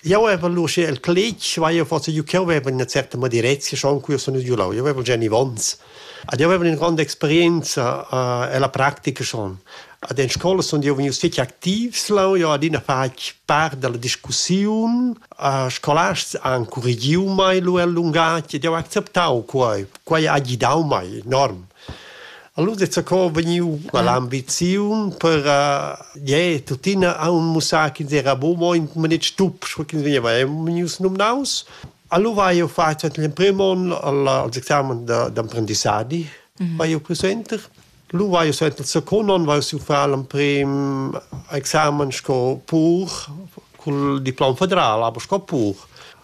Jau avevel uschè il cletg, ma io forsa giu ch'eu vevel üna certa moderezia schon cu io sun giulau. Io vevel gia genivonz. Ad io vevel üna gronda experienza e la practica schon. Ad in scola sun io vegnius fich activs leu. Io adina fatg part da la discussiun. Scolasts han curregiu mei lur lungatg ed jau ha acceptau quai. Quai ha gidau mei enorm. Allura dezza co vegniu quell'ambiziun per eh tuttina aunc mussar ch'ins era buc mo in maletg tup, sco ch'ins vegneva vegnius numnaus. Allura hai jeu fatg l'emprim onn als examens d'emprendissadi vai jeu cul center. Lu vai jeu suenter il secund onn vai jeu far l'emprim examen sco pur cul diplom federal, aber sco pur.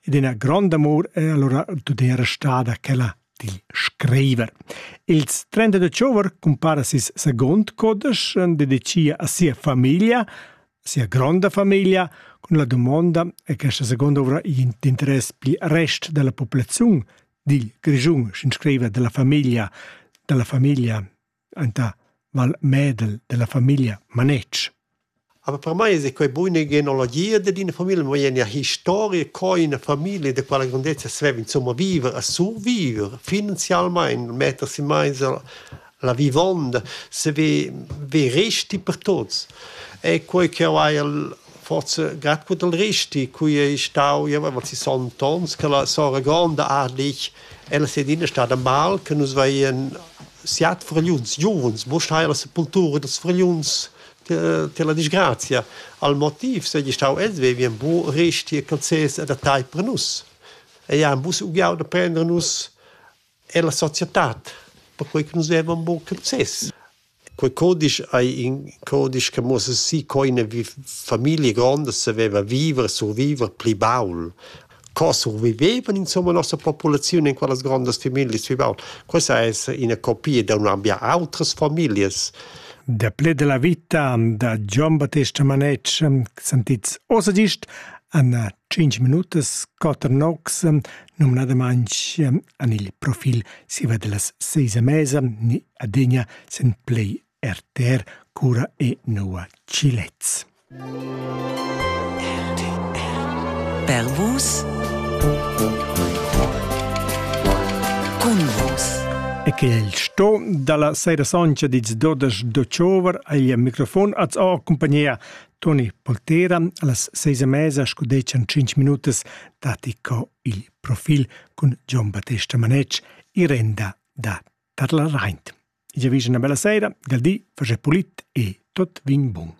ed ina grond amur è allora tut era stada quella dil scriver. Ils 30 de Chauver compara sis second codesch dedicia a sia famiglia, sia gronda famiglia, con la domanda è che questa seconda ovra in interess pli rest della popolazione, dil Grigiun, sin scriver della famiglia, della famiglia enta Val Medel della famiglia Manetsch. Aber per mei es quei buina genealogia dad ina famiglia, ma è ina historia co ina famiglia da quella grandezza sveva insomma viver a survivere finanzialmente, mettersi mai la vivonda, se ve, ve resti per tuts. È quei che hai forse grad gut al risti qui ei stau ja aber si sontons che la sora gronda adlich ella se dina stada mal che nus veien siat fragliuns giuvens mo sta la sepultura dels fragliuns te la disgrazia al motiv se gli stau els vevien bu risti e calzes adattei per nus e ja bus ugiau da prender nus è la societad, perquei che nus vevan buca access. Quei codisch ei in codisch che muss si coina vi famiglia gronda saveva viver, surviver pli baul. Co survivevan insomma nossa populazione in quellas grandas families pli baul? Questa è una copia da un'ambia altres families. Der Ple de la Vita da Gian Battista Manetsch sentits ossa gist an Tschinch minutas, quatter nocs, numnadamaintg an il profil siva delas seis a mesa, ni adegna sen play RTR cura e noua Chilets. Per vos Cun vos E che il sto dalla seira soncha dits dodas d'Ochover agl microfon az o compagnia Toni Poltera allas seis e mesa scudetschan tschinch minutas datti co il profil cun Gian Battesta Manetsch i renda da Tadleraint. Io vigi una bella sera, del di, faget pulit e tot vin bun.